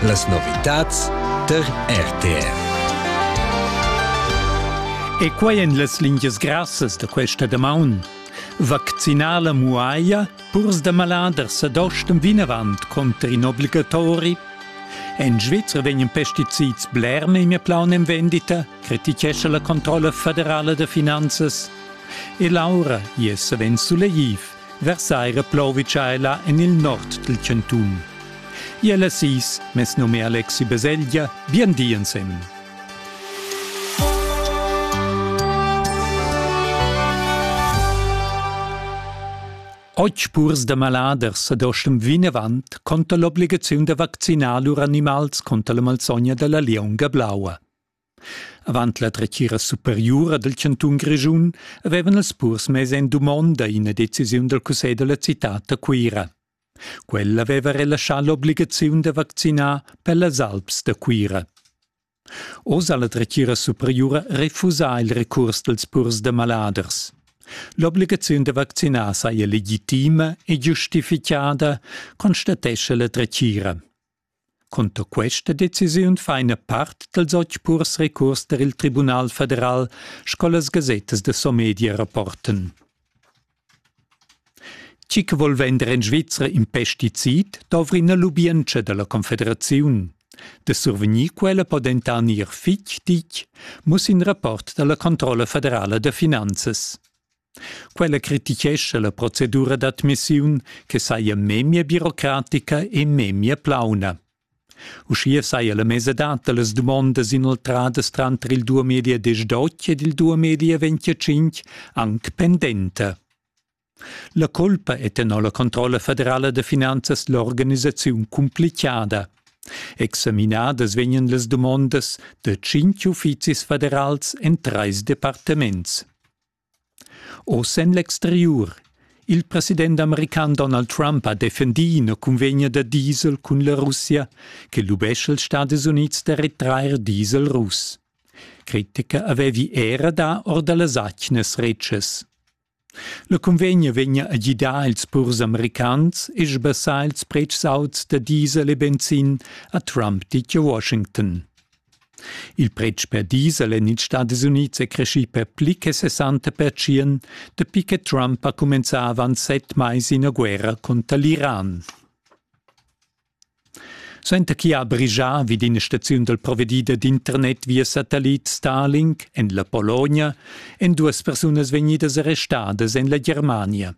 Las novitads tar RTR. E quai en las lingias grassas da questa damaun. Vaccinar la muaia, purs da maladers ad ostem vinavant conter in obligatori. En Svizra vegnan pesticids bler memia plaun en vendita, critichescha la controlla federala da finanzas. E Laura, je savens suleiv. Versailles replauvica ella en il nord dal chantun. Iel assis, mes num è Alexi Baselgia, bien di ensem. Oggi purs da maladers ad ostem vinavant conta l'obligaziun da vaccinar lur animals contra la malsogna dalla lionga blaua. Avant la dretgira superiura dal chantun Grischun avevan els purs mess en dumonda ina decisiun dal cussegl da la citad da Cuira. Quella aveva relaschà l'obligaziun da vaccinar per las alps da Cuira. Oz ha la dretgira superiura refusà il recurs dals purs da maladers. L'obligaziun da vaccinar saja legitima e giustificada, constatescha la dretgira. Cunter questa decisiun fa ina part dals otg purs recurs tar il Tribunal federal, sco las gasettas da Somedia rapportan. Tgi che vol vender en Svizra in pesticid dovri ina lubientscha da la Confederaziun. Da survegnir quella po dentant ir fitg ditg, muss in rapport da la Controlla federala da finanzas. Quella critichescha la procedura d'admissiun che saja memia birocratica e memia plauna. Uschia saja la mesadad da las dumondas inoltradas tranter il 2018 ed il 2025 anc pendenta. La colpa è tenor la controlla federala da finanzas l'organisaziun cumplichada. Examinadas vegnan las dumondas da tschintg uffizis federals en trais departaments. Oz en l'exteriur. Il president american Donald Trump ha defendì ina cunvegna da diesel cun la Russia che lubescha ils Stadis Unids da retrair diesel russ. Critica avevi era dà or da las atgnas retschas. La cunvegna vegnia a gidar ils purs americans e sbassar ils pretschs auts da diesel e benzin, ha Trump ditg a Washington. Il pretsch per diesel en ils Stadis Unids è creschì per pli che sessanta pertschient, dapi che Trump ha cumenzà avant set mais ina guerra cunter l'Iran. Suenter chi ha brigià vid ina staziun dal provedida d'internet via satellit Starlink en la Pologna èn duas persunas vegnidas arrestadas en la Germania.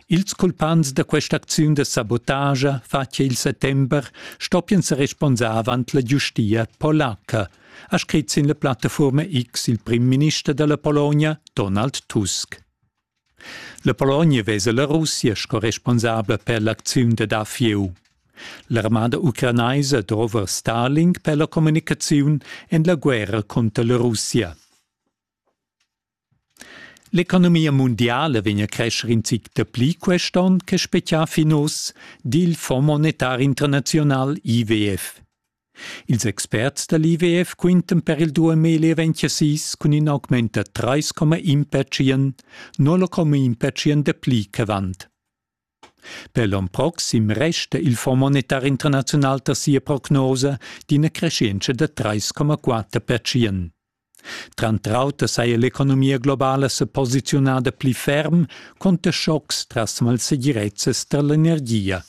Ils culpants da quest'acziun da sabotagia fatga il settember stoppian sa responsar avant la giustia polaca, ha scrit sin la plattafuorma X il primminister dalla Pologna, Donald Tusk. La Pologna vesa la Russia sco responsabla per l'acziun da dafieu. L'armada ucranaisa drova Stalin per la comunicaziun en la guerra cunter la Russia. L'economia mundiala vegn a crescher in zic dapli quest onn che spezià fin oz, di il Fonds monetar internaziunal IWF. Ils experts da l'IWF quintan per il 2026 cun in augment da 3,1 percient, no la comma in percient dapli ch'avant. Per l'on proxim resta il Fonds monetar internaziunal tar sia prognosa d'ina creschientscha da 3,4 pertschient. Tranter auter saja l'economia globala sa posiziunada pli ferm cunter schocks tras malsegirezzas tar l'energia.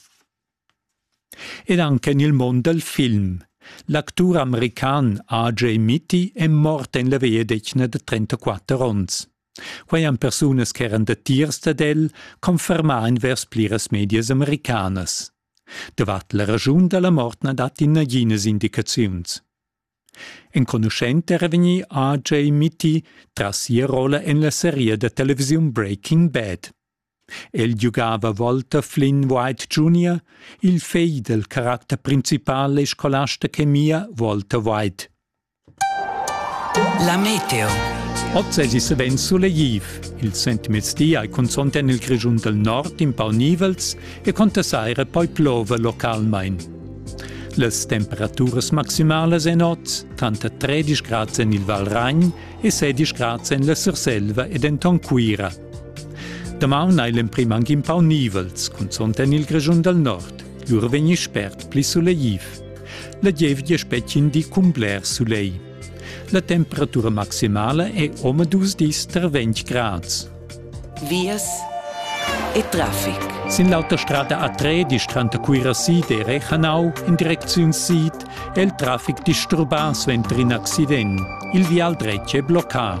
Ed anche en il mund dal film. L'actur american AJ Mitty è mort en la vegliadetgna da 34 onns. Quei han persunas ch'eran datiers dad el confermà envers pliras medias americanas. Davart la raschun dalla mort na datti naginas indicaziuns. Enconuschent era vegnì RJ Mitty tras sia rolla en la seria da televisiun Breaking Bad. El giugava Walter Flynn White Jr., il fegl dal caracter principal e scolasta chemia Walter White. La meteo. Oz es i's vegn sulegliv. Il sentmezdi hai cunzont en il Grischun del Nord in pau nivels e conta saira poi plova localmain. Las temperaturas maximalas en oz tanta 13 grads en il Valragn e 16 grads en la Surselva e denton Cuira. Damaun hai l'emprim anche un pau nivels, cunzont en il Grischun del Nord. Lur vegni spert pli sulegliv. La gievgia spetgin di cun bler sulegl. La temperatura maximala è omadus dis tar 20 grads. Vias e traffic. Sin l'autostrada A3 distranta Cuirasid e Rechanau in direcziun sid è il traffic disturbà suenter in accident. Il vial dretg è bloccà.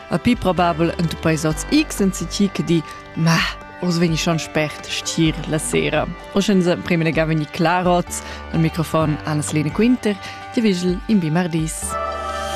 A pi probabel ent peis oz X en citi che di Ma, oz vegni schon spert stier la sera. O sche nus prima nega vegni clar oz, al microfon Annas Lene Quinter, ti vigel in bi mardis.